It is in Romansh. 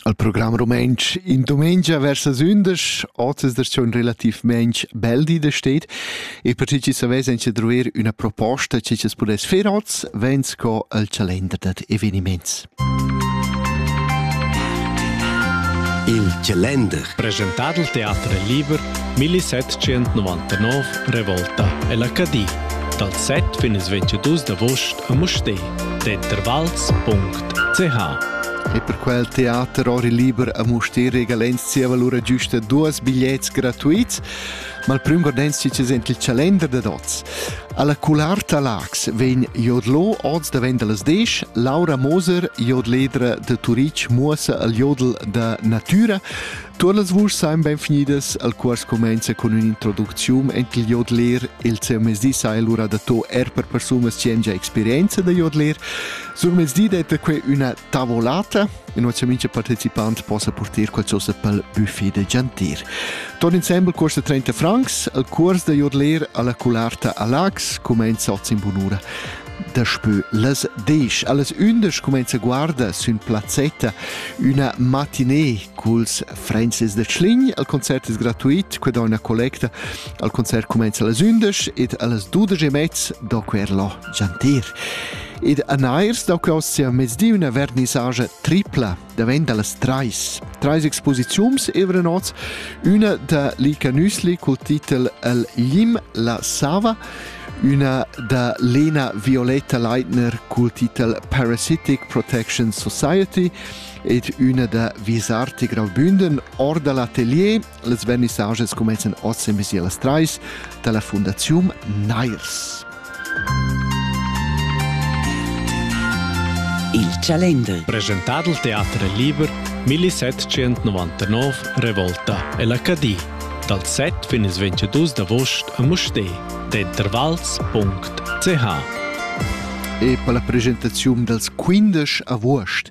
Al program rumantsch in dumengia versa sündesch ozes da schon relativmaing bel di da steht e per chi savess anche druer üna proposta che ci pudess fer oz ven sco al calender dad eveniments. Il calender presentat al teater liber 1799 Revolta e l'Acadie dal 7 fin il 22 d'agost a Mustè, Tetter Valls.at Teha. E per quel teater ori liber a Mustér regalens zieva lura giusta duos bigliets gratuits, ma il prüm gordenstic es ent il chalender dad hoz. Alla Cularta Lax vegn jodlo oz davent las 10, Laura Moser, jodledra de Turic, muossa al jodel da natura. Tuot las vuschs sain ben finidas, al cuors comenza cun ün'introducziun ent il jodler. Il seu mezdi sai lura dato er per persunas chi han già experienza da jodler. Surmezdi detta que üna tavolata e nossa mincha participant possa porter qualchosa pel buffet de gentir. Ton insembel costa 30 francs, al curs de Jodler alla Cularta a Lax comenza oz in bunura. Daspö las 10. Alles ündisch comenza guarda sün plazzetta una matinée culs Francis de Schlign. Al concert es gratuit, que da una collecta. Al concert comenza alles ündisch ed alles 12 e mezz do quer lo gentir. Ed a nair stau claus sia mezdi üna vernissagia tripla, davent dallas trais. Trais exposiziums evra nots, üna da Lika Nüsli col titel El Lim la Sava, üna da Lena Violetta Leitner col titel Parasitic Protection Society ed üna da Visarti Graubünden Orda l'atelier Las vernissages cumenzan oz emezi las trais dalla fundaziun Nairs. Il Chalender. Presentà dal teater liber 1799 Revolta e l'Acadì dal 7 fin ils 22 d'avost a Mustér d'intervals.ch E per la presentaziun dals 15 avuost